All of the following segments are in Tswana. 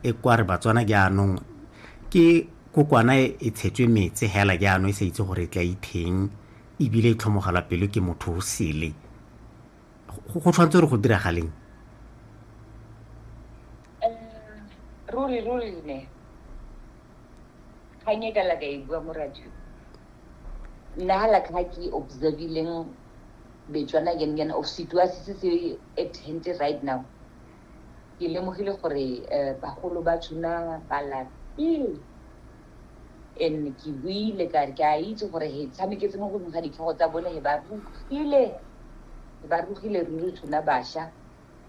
e kwa re batswana jaanong ke kokwana e, e tshetswe metse hela jaanong e sa itse gore e tla itheng ebile e tlhomogelwa pelo ke motho o sele go tshwanetse gore go diragaleng ruri ruri ne kgang e ka la ka e bua mo radio nna ga la kga ke observileng betswana again again of situasi se se at hente right now Ke lemogile gore bagolo ba tshuna ba lapile and ke buile ka re ke a itse gore he tshameketse mo godimo ga ditlhogo tsa bone he ba rugile he ba rugile ruri tshuna basha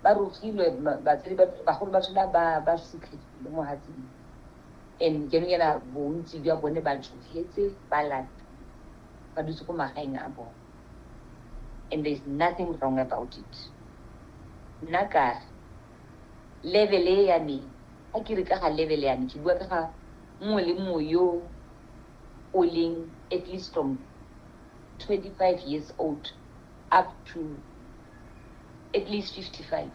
ba rugilwe batsadi bagolo ba tshuna ba ba sikhegile mo hatsing and ke nngena bontsi jwa bone ba tshogetse ba lapile ba dutse ko magaeng a bone and there's nothing wrong about it nna kare level e ya me a ke re ka ga level ya me ke bua ka ga mongwe le mongwe yo o leng at least from 25 years old up to at least 55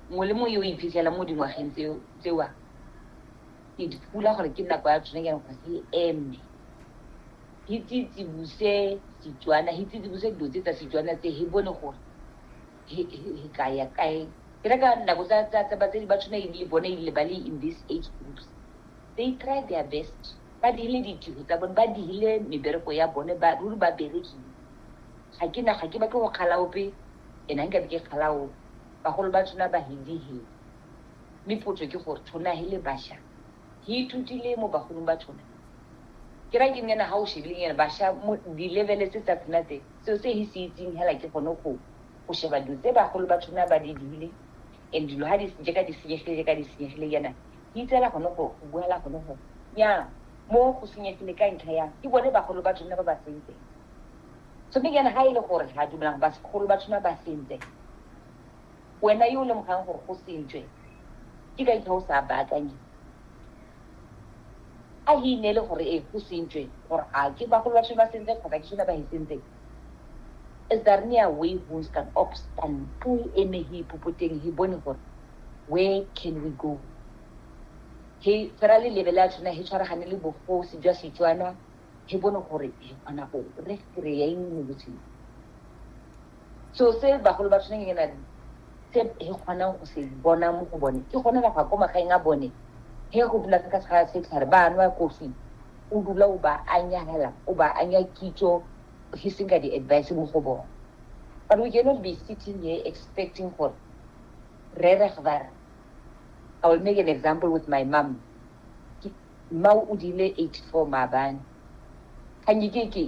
mongwe le mongwe yo o iphitlhela mo dingwageng tsewa ke dipula gore ke nako ya tsone ke gore e eme hi tsitsibuse Setswana, hi tsitsibuse dilo tse tsa Setswana tse, hi bone gore hi ka ya kae. Ke reka nako tsa batsadi ba tshwana ebile bone ebile ba le in this age groups, they try their best. Ba dirile ditiro tsa bone, ba dirile mebereko ya bone, ruri ba berekile. Ga ke na, ga ke batle go kgala ope and ga nkabe ke kgala ope. Bagolo ba tshwana ba re dihile, mme potso ke gore tshwana he le basha. ke ithutile mo bagolong ba tshona ke ra ke nnyana ga o shebile nyana basha mo di-levele tse tsa tsona tse seo se he se itseng hela ke gone go go sheba dilo tse bagolo ba tshona ba di dile and dilo ga di je ka di senyegile je ka di senyegile yana ke itsela gone go go buela gone go ya mo go senyegile ka ntlha ya ke bone bagolo ba tshona ba ba sentse so mme yana ga e le gore ga dumelang ba segolo ba tshona ba sentse Wena yo o lemogang gore go sentswe, ke ka eng o sa baakanye? A he ineele gore ee, go sentswe, gore a ke bagolo ba ba sentseng kgotsa ke sone ba he sentseng. Is daar nie 'n way ons kan opstaan toe hy eme hier popo teng hy bone gore where can we go? Hy tshwara lelebe la tshwana hy tshwaragane le bogosi jwa Setswana hy bone gore hy kgona go re kry-a eng mo botshelong. So se bagolo ba tshwaneng le nna se he kgonang go se bona mo go bone ke gone ba ko magaeng a bone he go dula ka tshwara setlhare ba nwa kofi o dula o ba anyagela o ba anya kitso he seng ka di-advice mo go bone but we cannot be sitting here expecting gore re re gvara i will make an example with my mom mma o dile 84 maabane kganye ke ke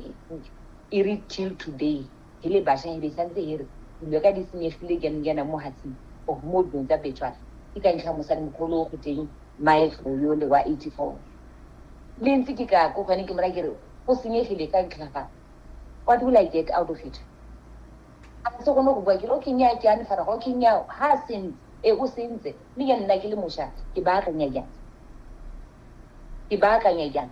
e re till today Re le basha e be e santse e re dilo ka di senyegile jang jaana mo Hatsing of mo dilong tsa Betswana. Ke ka ntlha ya mosadimogolo o go teng Mae Tlhou yole wa 84. Le ntse ke ka ko go ene ke mo raya ke re go senyegile ka ntlha ya fa what will I get out of it? A ntse gone go bua ke re okay nnyaa ke a ne faraga okay nnyaa ha a sentse e o sentse mme jaanong nna ke le mosha ke baakanya jang? Ke baakanya jang?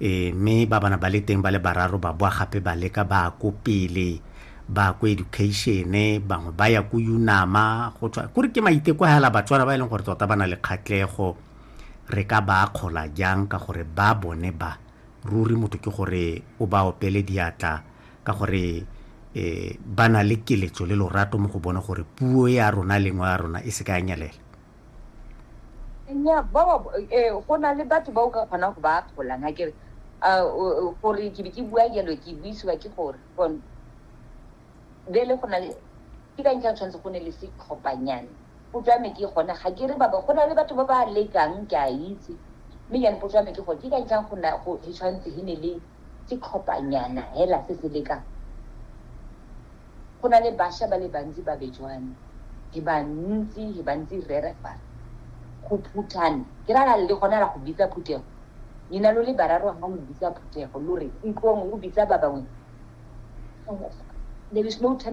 e, mme ba bana ba le teng ba le bararo ba boa gape ba leka ba ya ko pele ba ya ko education-e bangwe ba ya ko unama go tswa kore ke maiteko a hela batswana ba e leng gore tota ba na le kgatlego re ka ba akgola jang ka gore ba bone ba ruri motho ke gore o ba opele diatla ka gore um ba na le keletso le lorato mo go bone gore puo ya rona lengwe ya rona e se ka ya nyelela nya ba ba eh, go na le batho ba o ka kgonang go ba akgolang ga kere ah, gore ke be ke bua jalo ke buisiwa ke gore bele go na le ke ka ntlha tshwanetse go ne le setlhophanyane potso ya me ke gone ga ke re baba go na le batho ba ba lekang ke a itse mme jane potso ya me ke gore ke ka ntlhang go tshwanetse e ne le setlhophanyana hela se se lekang. Go na le basha ba le bantsi ba Bejwane, he ba ntsi, he ba ntsi rere fale. Go phuthana, ke ra la le gona la go bitsa phuthego. Nina lo le bararo ha lo bitsa phuthego, lo re ntlong lo bitsa ba bangwe. There is no turn